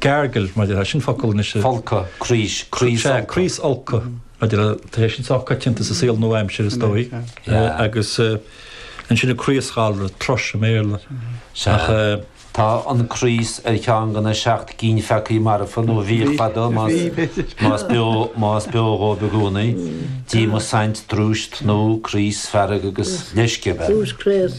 Gargle, maidir leis an focal anois a. Folcadh, craos, craosfholcadh. Sea, craosfholcadh, maidir le, tá sé sin sách coitianta sa saol nua-aimseartha, is dóigh, agus ansin an craosghalar, thrush i mBéarla, ach. Tá an craos ar cheann de na seacht gcinn pheacaí marfa nó bhíodh fadó más beo, más beo dhó i gcónaí, díomas saint, drúis, tnúth, craos, fearg agus leisce, a bheith. Drúis, craos.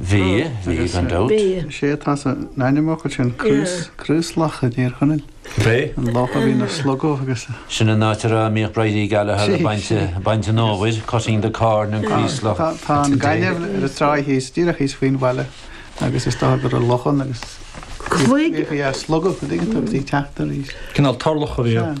Bhí, bhí, gan dabht. Is é atá san ainmfhocal sin craos, Craoslach i dTír Chonaill. B'é. An loch a bhíonn ag slogadh agus a. Sin an áit a mbíodh Bridie Gallagher ag baint, baint an fhómhair, cutting the corn in Creeslough. Tá, tá an gaineamh ar an tráigh thíos, díreach thíos faoin bhaile agus is dócha go raibh loch ann agus bhíodh sí ag slogadh, go dtuigeann tú, agus í ag teacht arís. Cineál turlach a bhí ann.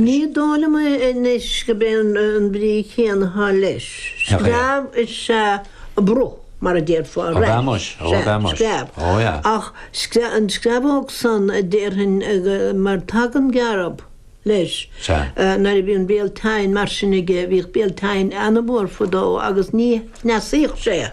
Ní dóigh liom anois gurb é an bhrí chéanna atá leis. Screamh is ea a bruth, mar a déarfá ar ais, sea, screamh. Ach an screamhóg san a déarfainn, mar tagann gearb leis, nuair a bhíonn béal teinn mar sin aige, bhíodh béal teinn an-mhór fadó agus ní chneasaíodh sé.